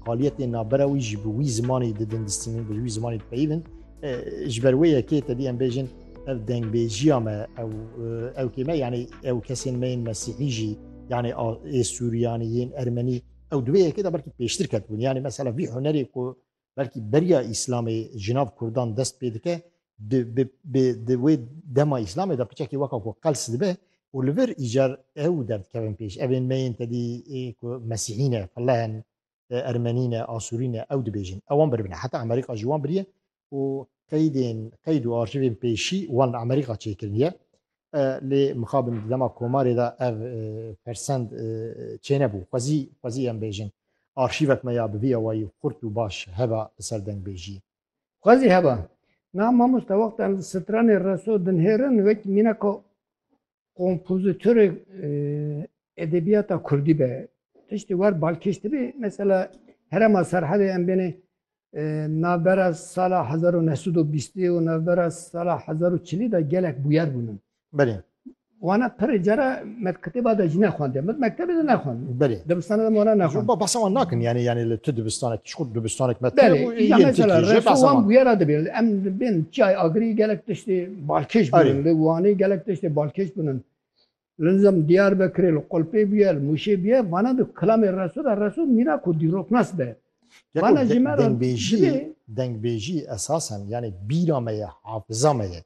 Qaliyetên navbera wî jî bi wî zimanê didin distînin, bi wî zimanê dipeyivin. Ji ber wê yekê tedî em bêjin ev dengbêjiya me ew ew kê me yanî ew kesên me yên mesîhî jî yanî ê Sûriyanî yên Ermenî ew di wê yekê de belkî pêştir ketbûn. Yanî mesela vî hunerê ku belkî beriya Îslamê ji nav Kurdan dest pê dike di wê dema îslamê de piçekî weka ku qels dibe û li vir îcar ew derdikevin pêş. Evên me yên tedî ku mesîhî ne, felleh in, ermenî ne, asûrî ne ew dibêjin. Ew wan biribne. Heta Amerîka ji wan biriye û qeydên qeyd û arşîvên pêşî wan li Amerîka çêkiriniye. Lê mixabin di dema komarê de ev fersend çênebû. Xwezî xwezî em bêjin arşîvek me ya bi vî awayî xurt û baş heba li ser dengbêjiyê. Xwezî heba. Na mamoste wexta em stranê reso dinhêrin wek mînaka kompozitorê edebiyata Kurdî be. Tiştî wer balkêş dibe mesela herema Serhedê em bêne navbera sala hezar û neh sed û bîstê û navbera sala hezar û çilî de gelek bûyer bûnin. Belê. Wana pirê cara me kitêba de jî nexwendê. Min mektebê de nexwendê. Belê. Dibistana de wana nexwendê. Ba bahsa wan nakin yani yani li tu dibistanek çiqûr dibistanek me Belê. Ya mesela refa wan bûyera dibê. Em dibên çiyay agirî gelek tiştê balkêş bûnin. Li Wanê gelek tiştê balkêş bûnin. Li nizam Diyarbekirê li Qulpê bûye, li Mûşê bûye. Wana di kilamê reso de reso mîna ku dîroknas be. Yeko dengbêjî, dengbêjî esasen yanî bîra me ye, hafiza me ye.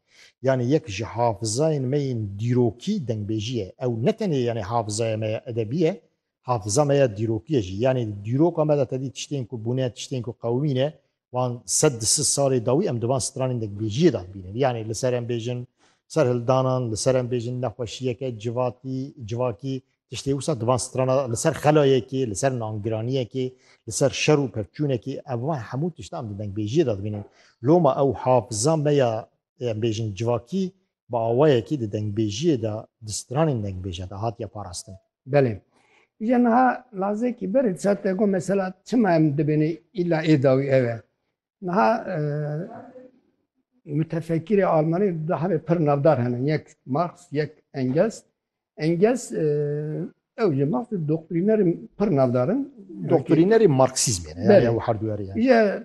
Yanî yek ji hafizayên me yên dîrokî dengbêjî ye. Ew ne tenê yanî hafizaya me ya edebî ye, hafiza me ya dîrokî ye jî. Yanî di dîroka me de tedî tiştên ku bûne, tiştên ku qewimî ne, wan sed di sid salê dawî em di van stranên dengbêjiyê de bînin. Yanî li ser em bêjin serhildanan, li ser em bêjin nexweşiyeke civatî, civakî, Tiştê wisa di van strana de li ser xelayekî, li ser nangiraniyekî, li ser şer û pevçûnekî ev van hemû tişt em di dengbêjiyê de dibînin. Loma ew hafiza me ya em bêjin civakî bi awayekî di dengbêjiyê de di stranên dengbêje de hatiye parastin. Belê. Îje niha lazekî berê disa te got mesela çima em dibêne îla êdawî ew e. Niha mütefekkirê Almanî di hemê pir navdar hene. Yek Marx, yek Engels. Engels ew ji Marx doktrînerê pir navdar in. Doktrînerê Marksîzmê ne yani ew herdûerê yani. Ye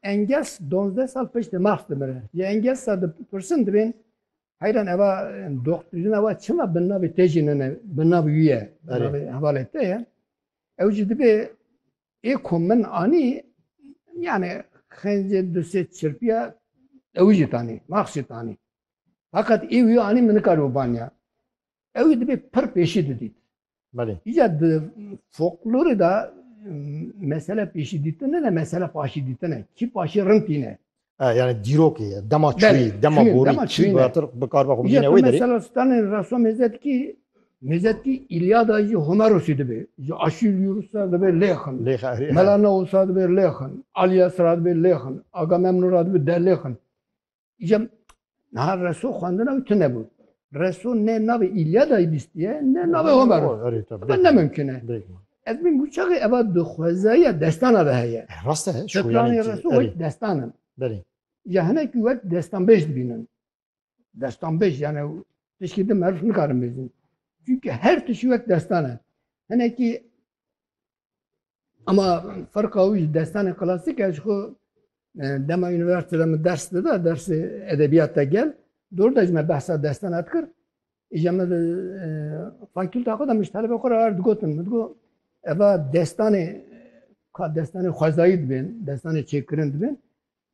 Engels 12 sal piştê Marx dimire. Ye Engels da pirsin dibên heyran eva doktrîna wa çima bi navê te jî nene bi navê wî ye. Bi navê hevalê te ye. Ew jî dibê Ê ku min anî yani xencê du sê çirpiya ewî jî tanî max jî tanî. Fakat ê wî anî min nikar û banya. Ewî dibê pir pêşî didît. Belê. Îca di foklorê da mesele pêşî dîtin ne mesele paşî dîtin e. Kî paşî rind tîne. Yani dîrokê ye, dema çûyî, dema borî, çî batir bikarba xwe bigîne wê derê. Mesela stanê rasa mêzetkî, mêzetkî Îlyada jî Homerosî dibe. Ji Aşîlyûrusa dibe Lêxin. Melanausa dibe Lêxin. Alyasra dibe Lêxin. Agamemnora dibe Delêxin. Îja Niha reso xwendina wî tune bû. Reso ne navê îlyadayî bîstiye ne navê Homer. Ev ne mimkine. Ez bîn bû çaxê eva di xwezayiya destana de heye. Eh, rast e. Şoyanê reso wek destan in. Belê. Ya hinek wek destanbêj dibînin. Destanbêj yani tişkî di merv nikarin bêjin. Çünkü her tişî wek destan e. Hinekî Ama ferqa wî ji destanê klasîk e ji xwe dema universite de min ders dida dersê edebiyat te gel dor de ji me behsa destana dikir îja me di fakîlta xwe de min ji telebe xwe re her digotin min digot eva destanê ka destanê xwezayî dibên destanê çêkirin dibên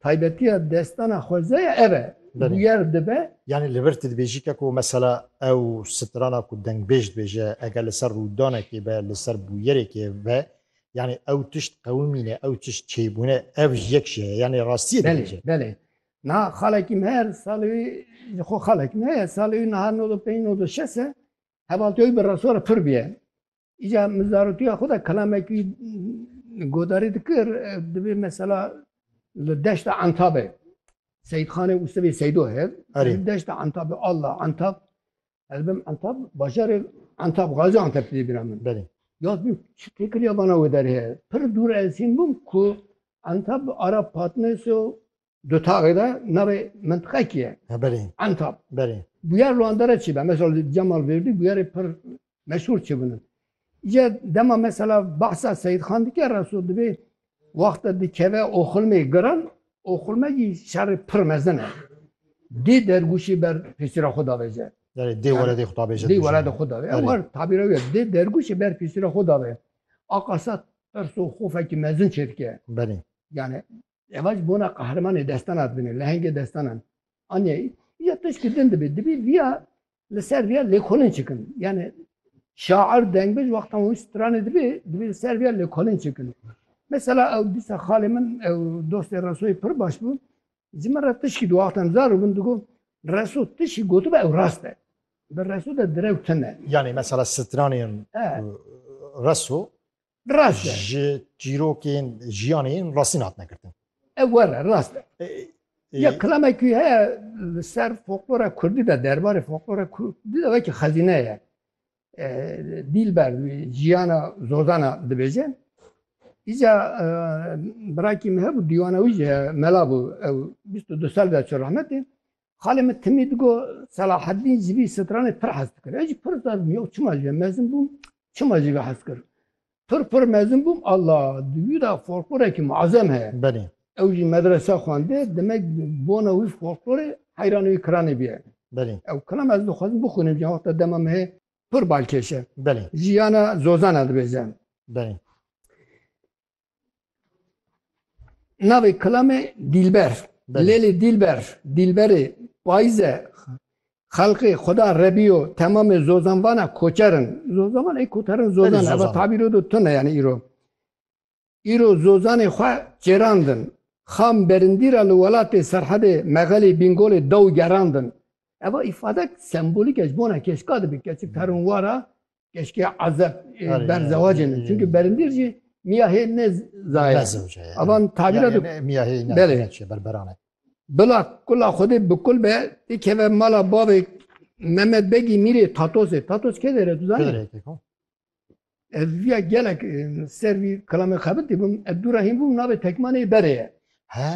Taybetiya destana xweze ya ev e. Bûyer dibe. Yanî li vir tu dibêjî ke ku mesela ew strana ku dengbêj dibêje eger li ser rûdanekê be, li ser bûyerekê be yanî ew tişt qewimîne, ew tişt çêbûne ev ji yek jî heye. Yanî rastiyê dibêje. Belê, belê. Niha xalekî min her salê wî ji xwe xalekî min heye salê wî niha nod û pênc nod û şes e hevaltiya wî bi resora pir bûye. Îca min zarotiya xwe de kelamekî godarî dikir divê mesela li deşta Entabê Seyîdxanê û sivê Seydo hev deşta Entabê Allah Entab ez bim Entab bajarê Entab Gazi Enteb dê bîra min belê yaz bim çi têkir ya bana wê derê pir dûr ez hîn bûm ku Entab ara Patneso Di taxê de nerê mintiqekî ye. Belê. Entab. Belê. Bûyer li wan dere çi be? Mesela li Cemal Vêrdî bûyerê pir meşhûr çi bûn. Îca dema mesela behsa Seyîd Xan dike reso dibê wexta dikeve oxilmê giran oxilme jî şerê pir mezin e. Dê dergûşê ber pêsîra xwe davêje. Belê dê weledê xwe davêje. Dê weledê xwe davêje. Ew her tabîra wî ye. Dê dergûşê ber pêsîra xwe davêje. Aqasat perso xofekî mezin çêdike. Belê. Yani Eva ji bona qehremanê destan hat bine, lehengê destan an. Anya ya tişkî din dibê, dibê viya li ser viya lêkolin çikin. Yani şair dengbij wextan wî stranê dibê, dibê li ser viya lêkolin çikin. Mesela ew dîsa xalê min ew dostê Resoyê pir baş bû. Ji min re tişkî di wextan zar û min digo Reso tişkî gotibe ew rast e. Bi Reso de direw tune. Yani mesela stranên Reso Rast e. ji çîrokên jiyanê yên rastîn hatine girtin. Ew were rast e. E, e, Ya kilamekî heye li ser folklora Kurdî de derbarê folklora Kurdî de wekî xezîne ye. E, Dîlber jiyana zozana dibêje. Îca e, birakî min hebû dîwana wî jî heye, mela bû ew 22 sal de çû rehmetê. Xalê min timî digot, Selaheddîn ji vî stranê pir hez dikir. Ez jî pir zazim, Yow çima jî mezin bûm, çima jî vê hez kir? Pir pir mezin bûm, Alla, di wî de folklorekî muezem heye. Belê. Ew jî medrese xwendê, demek bona wî folklorê heyranê wî kiranê bûye. Belê. Ew kiram ez dixwazim bixwînim ji wexta dema me heye pir balkêş e. Belê. Jiyana zozan e dibêje. Belê. Navê kilamê Dîlber. Lêlê Dîlber, Dîlberê Payze xelqê Xuda Rebîyo temamê zozanvana koçer in. Zozanvan ê koter in zozan eva tabîro do tune yani îro. Îro zozanê xwe çêrandin. Xam berindî ra li welatê Serhedê Mexelê Bîngolê dew gerandin. Eva îfadek sembolîk e ji bona keşka dibe keçik terin wara Keşke azep e, ber zewacê ne. Çünkü berindîr jî miya hê ne zaye. Ne zewce ye. Avan tabîra Yani ne- miya hê ne Belê. ne çi berberane. Bila kula xwedê bi kul be tê keve mala bavê Mehmet Begî Mîrê Tatosê. Tatos kê dere tu zanî? Kıdreyke ko. Ez viya gelek e, ser vî kilamê xebitî bûm. Ez dûra hîn bûm navê tekmanê berê ye. He.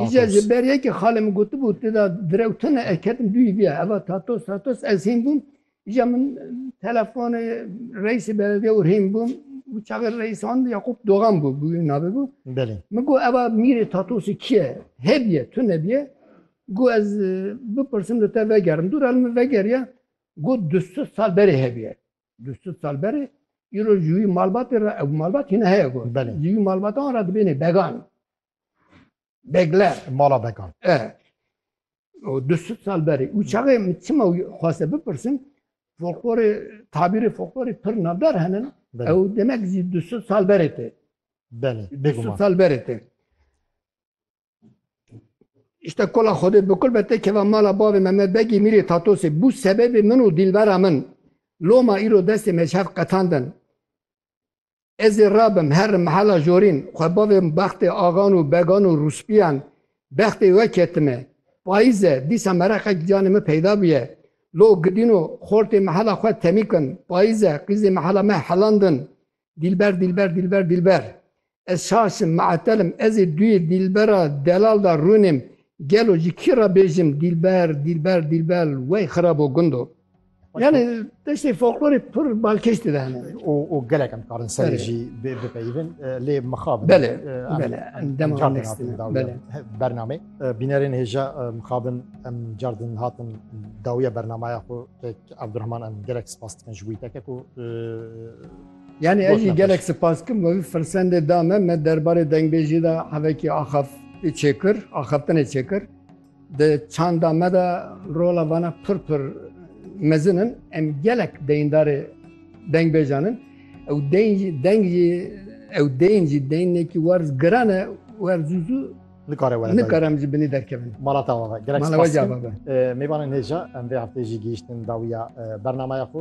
Îca Tatos. ji ber ye ki xalê min gotibû tê de direw tune ez ketim duyî viya. Eva Tatos Tatos ez hîn bûm. Îca min telefonê reîsê beledê Urhîn bû û çavê reîs an Yaqûb Dogan bû bû navê bû. Belê. Min got eva mîrê Tatosî kî ye? Hêbiye, tu nebiye. Got ez e, bipirsim li te vegerim. Dûra li min vegeriye. Got du sed sal berê hebiye. Du sed sal berê îro ji wî malbatê re ew malbat hîne heye got. Belê. Ji wî malbatan re dibênê began. Begler. Mala bekan. E. O du süt sal berê. Û çavê min çima xwase bipirsin, folklorê, tabîrê folklorê pir navdar henin. Ew demek zî du süt sal berê tê. Belê. Du süt sal berê tê. İşte kola xodê bikul bete keva mala bavê Mehmet Begî Mîrê Tatosê bû sebebê min û dîlbera min. Loma îro destê meşhef qetandin. Ez ê rabim herr mehela jorîn xwe bavêm bextê axan û began û rûspîyan bextê we ketime payîze dîsa mereqek di canê min peyda bûye lo gidîno xortê mehela xwe temîkin payîze qîzê mehela me helandin dîlber dîlber dîlber dîlber ez şaş im meetel im ez ê duyê dîlbera delal de rûnêm gelo ji kî re bêjim dîlber dîlber dîlber wey xirabo gundo. Yani destê folklorê pir balkêş dide hene. û û gelek em karin serê Belê. jî bi- bipeyivin e, lê mixabin Belê, em- belê, em em dema cardin next hatin dine, dawiya belê. bername E, bînerên hêja e, mixabin em cardin hatin dawiya bernamaya xwe tek Abdurrahman em gelek spas dikin ji wî teke ku e, Yani Boş ez jî nefes. gelek spas kim ve firsendê da me me derbarê dengbêjî de hevekî axaf çêkir, axaftinê çêkir. Di çanda me de rola vana pir pir mezin in. Em gelek deyindarê dengbêjan in. Ew deyn jî deng jî ew deyn jî deynekî werz giran e wer zû zû Nikare were dayî. nikare em ji binî derkevin. Mala te ava be. Gelek Mala we spas jî dikim. ava be. Ee, Mêvanên hêja em vê hefteyê jî gihîştin dawiya e, bernamaya xwe.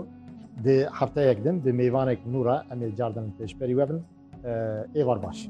Di hefteyek din bi mêvanek nû re em ê cardin pêşberî we bin. Ee, Êvar baş.